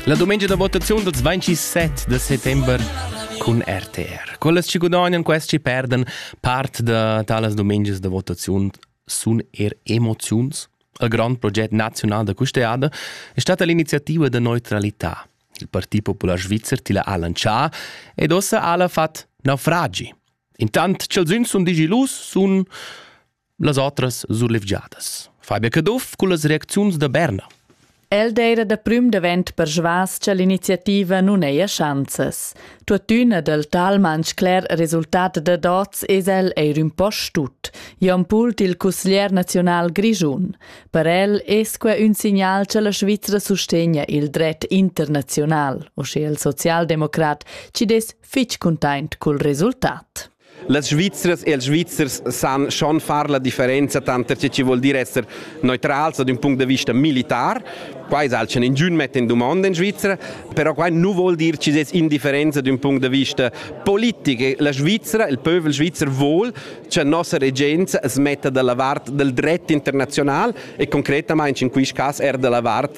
La domenica da votaziun dals 27 de settember cun RTR. Quelles ci gudagnano, questi ci perdan part da talas domeniche da votaziun sun er emoziuns. Il grande progetto nazionale da custeada è stata l'iniziativa de neutralità. Il Parti Popular Svizzer tila ha lancià ed ossa ha la fat naufragi. Intant ch'els sun sun digilus sun las otras surlevgiadas. Fabia Caduff con las reacziuns da Berna. El d'eira da prüm davent persvas cha l'iniziativa nun eia schanzas. Tuottüna dal talman scler resultat da dots es el eir ün po stut. Jon Pult il cusglier nazional grischun. Per el es que ün signal cha la Svizra sustegna il dret internazional, o sche il socialdemocrat, ci des fich cuntaint cul resultat. Las Svizzers e els Svizzers san schon far la differenza tanter tge chi vuol dir esser neutrals ad ün punct da vista militar. Qua es alch ingün mett in dumanda in Svizzera, però quai nu vuol dir chi es indifferenza ad ün punct da vista politic. La Svizzera, il pövel svizzer vuol cha nossa regenza as metta dalla vart del dret internazional e concretamaing in quist cas er dalla vart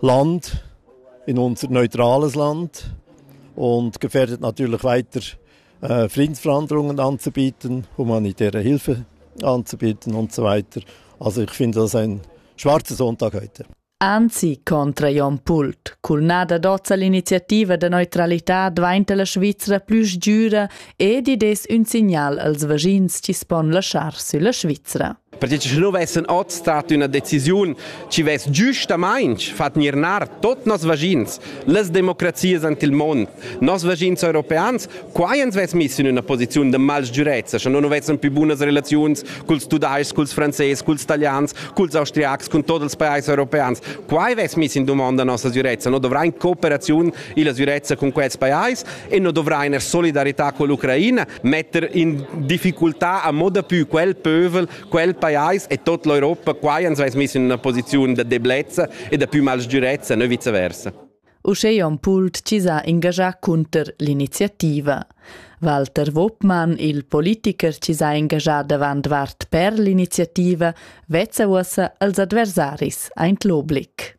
Land, in unser neutrales Land und gefährdet natürlich weiter äh, Friedensverhandlungen anzubieten, humanitäre Hilfe anzubieten und so weiter. Also ich finde das ein schwarzer Sonntag heute. Anzi, contra Jon Pult. Cul nada dozza l'iniziativa de neutralità dvainta la Svizzera plü sgiüra ed i des ün signal als vaschins chi spon laschar sülla Svizzera. Pertge che nu vessan ot stat üna decisiun chi vess giustamaing fat gnir nar tot noss vaschins, las democrazias ant il mond, noss vaschins europeans, quai ans vess miss in üna posiziun da malsgürezza, sche no nu vessan pü bunas relaziuns culs tudais-chs, culs frances, culs talians, culs austriacs, cun tot ils pajais europeans. Quai vess miss in dumonda nossa sgürezza. No dovrain cooperaziun illa sgürezza cun quels pajais e no dovrain er solidarità con l'Ucraina, metter in difficultà a moda pü quel pövel, quel pajais e tot l'Europa qua ans ais miss in una posiziun da deblezza e da pü mal sgürezza, ne viceversa. Uschè on Pult chi s'ha ingagià cunter l'iniziativa. Walter Wopmann, il politicher chi s'ha ingagià davant vart per l'iniziativa, vezza uossa als adversaris aint l'oblig.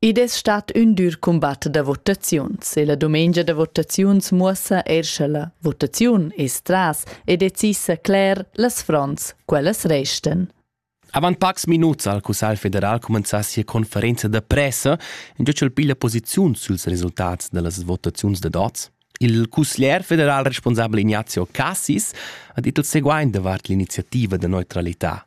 Id es stat ün dür cumbat da votaziuns e la dumengia da votaziuns muossa eir cha la votaziun es tras e decisa cler las fronts, quellas restan. Avant pacs minuts ha il Cussagl federal cumenzà sia conferenza da pressa, in giò ch'el piglia posiziun suls resultats da las votaziuns da dots. Il cusglier federal responsabel Ignazio Cassis ha dit il seguaint davart l'iniziativa da neutralità.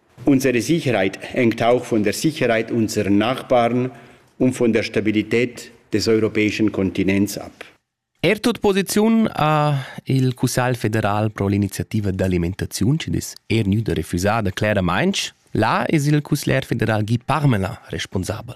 Unsere Sicherheit hängt auch von der Sicherheit unserer Nachbarn und von der Stabilität des europäischen Kontinents ab. Er tut posiziun a il Cussagl federal pro l'iniziativa d'alimentaziun che dis er gnüda refusada cleramainch. Là es il cussler federal Guy Parmelin responsabel.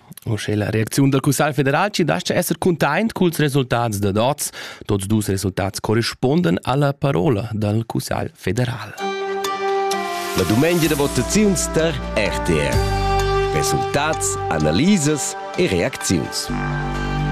Uschè la reacziun dal Cussagl federal ci dastga esser cuntaint culs resultats dad oz. Tuots dus resultats correspuondan alla parola dal Cussagl federal. La dumengia da votaziuns tar RTR. Resultats, analisas e reacziuns.